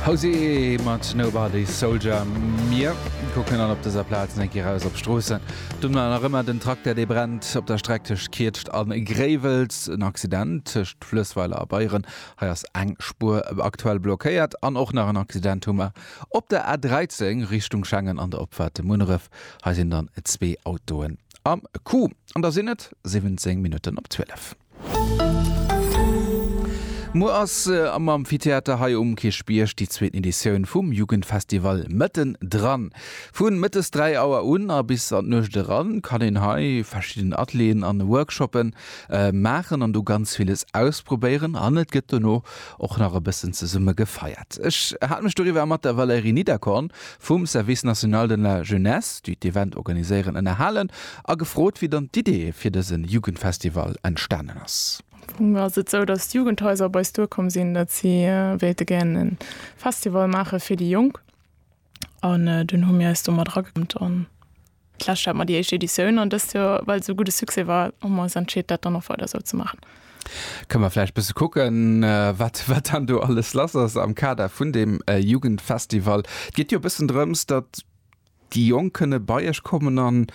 Hozier mat Nobody's Soldier. Mir kucken dann op dëser Plaz eng Kéier raus op d'Stroossen. Do war nach ëmmer den Tracteur, dee brennt op der Streck tëscht Kietscht a Gréiwels. En Accident tëscht Fluessweiler a Beyeren, hei ass eng Spuer aktuell blockéiert. An och nach en Accident hu mer op der A 13 Richtung Schengen an der Opfahrt de Munneref. Hei sinn dann zwee Autoen am Coup. An da sinn et 17 Minutten op 12. Muer ass am Amphitheater hei um Kierchbierg déi zweeten Editioun vum Jugendfestival Mëtten dran. Vu mëttes 3 Auer un a bis an d'Nuecht eran kann een hei verschidden Atelieren an Workshoppe maachen an do ganz villes ausprobéieren an et gëtt dono och nach e bëssen zesumme gefeiert. Ech hat mech doriwwer mat der Valérie Niederkorn vum Service National de la Jeunesse, déi d'Event organiséieren, ënnerhalen a gefrot, wéi dann d'Idee fir dësen Jugendfestival entstanen ass. Am Fong ass et sou, datt d'Jugendhaiser op eis duerkomm sinn, datt si wéilte gären e Festival maache fir déi Jonk an dunn hu mir eis do mat erageklëmmt. D'lescht hat mer déi éischt Editioun an dëst Joer, well et esou gudde Succès war, hu mer ons entscheet, dat dann och weider esou ze maachen. Kënne mer vläicht bësse kucken, wat, wat dann do alles lass ass am Kader vun deem Jugendfestival? Et geet jo e bëssen drëms, datt déi Jonk kënne bei iech kommen an,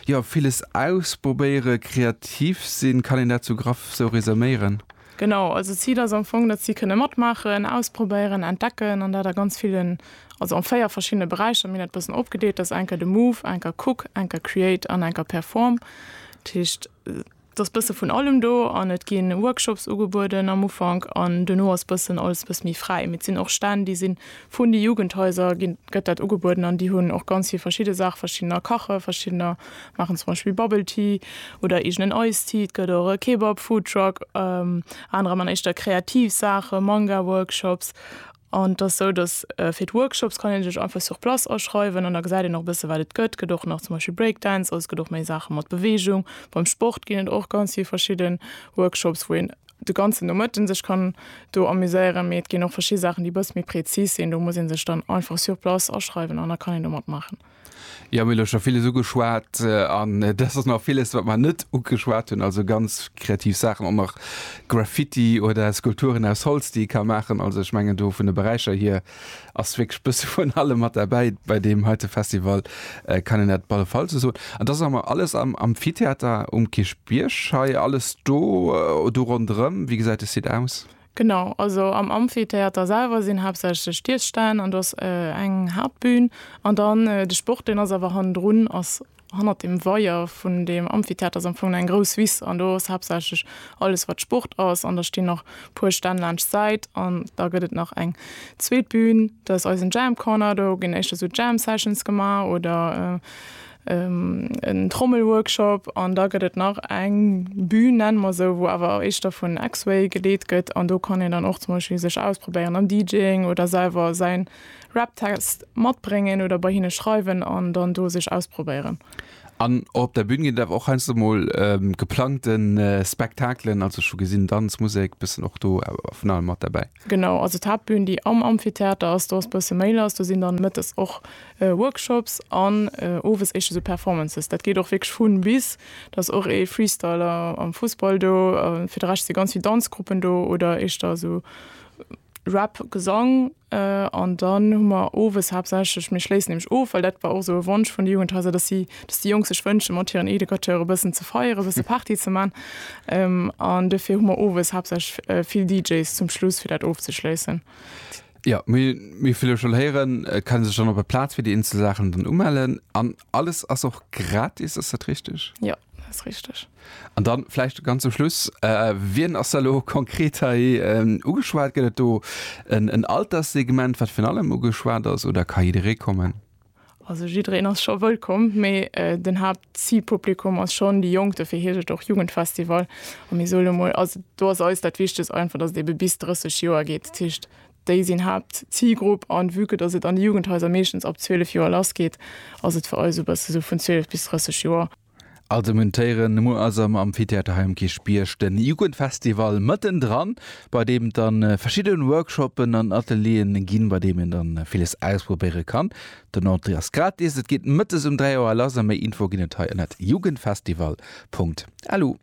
jo, villes ausprobéieren, kreativ sinn. Kann een dat esou graff esou resuméieren? Genau, also d'Zil ass am Fong, datt si kënne matmaachen, ausprobéieren, entdecken an dat a ganz villen, also an 4 verschiddene Beräicher. Mir hunn dat e bëssen opgedeelt, dat ass eng Kéier de Move, eng Kéier Cook, eng Kéier Create an eng Kéier Perform. Dat heescht, et ass e bësse vun allem do an et gi Workshops ugebueden am Ufank an duerno ass e bëssen alles e bësse méi fräi. Mee et sinn och Stänn, déi si Vun de Jugendhaiser ginn, gëtt dat ugebueden an déi hunn och ganz vill verschidde Saachen. Verschiddener kache, verschiddener maachen zum Beispill Bubble Tea oder eegenen Ice Tea. Et gëtt och e Kebab Foodtruck, anerer man éischter kreativ Saachen, Manga Workshops. An et ass esou, datt fir d'Workshops kann een sech einfach sur place aschreiwen an da gesäit een och e bësse wat et gëtt. Gëtt och nach zum Beispill Break Dance, also et gëtt och méi Saache mat Beweegung. Beim Sport ginn et och ganz vill verschidden Workshops wou een de ganzen Nomëtten sech kann do amuséieren, mee et ginn och verschidde Saachen, déi e bësse méi prezis sinn. Do muss ee sech dann einfach sur place aschreiwen an da kann een do matmaachen. Jo, mir hu lo scho villes ugeschwat an et ass och nach villes, wat mer net ugeschwat hunn. Also ganz kreativ Saachen, och nach Graffiti oder Skulpturen aus Holz, déi ee ka maachen. Also ech mengen do vun de Beräicher hier, Ass wierklech bësse vun allem mat derbäi bei deem heite Festival, kann een dat op alle Fall esou soen. An dass am alles am Amphitheater um Kierchbierg hei, alles do, do ronderëm? Wéi gesäit de Site aus? Genau, also am Amphitheater selwer sinn haaptsächlech d'Iesstänn an do ass eng Haaptbün an dann de Sport, deen ass awer hannendrun, ass Hannert dem Weier vun dem Amphitheater ass am Fong eng grouss Wiss an do ass haaptsächlech alles wat Sport ass an da stinn nach puer Stänn laanscht d'Säit an da gëtt et nach eng zweet Bühn, dat ass eisen Jam Corner, do ginn éischter esou Jam Sessions gemaach oder en Trommel Workshop an da gëtt et nach eng Bühn nenne mer esou, wou awer éischter vun X-Way geleet gëtt an do kann een dann och zum Beispill sech ausprobéieren am DJing oder selwer säin Rap-Text matbréngen oder bei hinne schreiwen an dann do sech ausprobéieren. An och op der Bün ginn et awer och heiansdo mol geplangte Spektakelen, also ech hu gesinn, Danz, Musek, bëssen och do vun allem mat derbäi. Genau, also d'Haaptbün, déi am Amphitheater ass, do ass bësse méi lass, do sinn dann mëttes och Workshops an owes éischter sou Performances. Dat geet och wierklech vun bis, da ass och ee Freestyler am Fussball do, fir de Rescht si ganz vill Danzgruppen do oder éischter esou Rap, Gesang an dann hu mer owes haaptsächlech, mir schléissen nämlech of, well dat war och esou e Wonsch vun de Jugendhaiser, datt si, datt déi Jonk sech wënsche mat hiren Educateuren e bëssen ze feieren, e bësse Party ze man an dofir hu mer owes haaptsächlech vill DJs zum Schluss fir dat ofzeschléissen. Jo, mir hu vill scho héieren, et kann ee sech dann op der Plaz fir déi eenzel Saachen dann umellen an Alles ass och gratis, ass dat richteg? Jo, dat ass richteg. An dann vläicht ganz zum Schluss, wien ass elo konkret hei ugeschwat? Gëtt et do en Alterssegment, wat virun allem ugeschwat ass, oder ka jidderee kommen? Also jiddereen ass scho wëllkomm, mee den Haaptzilpublikum ass schonn déi Jonk, dofir heescht et och Jugendfestival. A mir soe lo mol, also do ass eis dat Wichtegst einfach, datt et ebe bis 30 Joer geet. Déi sinn Haaptzilgrupp an vue que dass et an de Jugendhaiser meeschtens ab 12 Joer lass geet, ass et fir eis esou bësse sou vun 12 bis 30 Joer. Also muntéieren, muer ass am Amphitheater hei um Kierchbierg den Jugendfestival mëtten dran, bei deem et dann verschidden Workshoppen an Atelieren ginn, bei deem een dann villes ausprobéieren kann. Den Entrée ass gratis, et geet mëttes um 3 Auer lass a méi Info ginn et hei ënnert jugendfestival. Lu.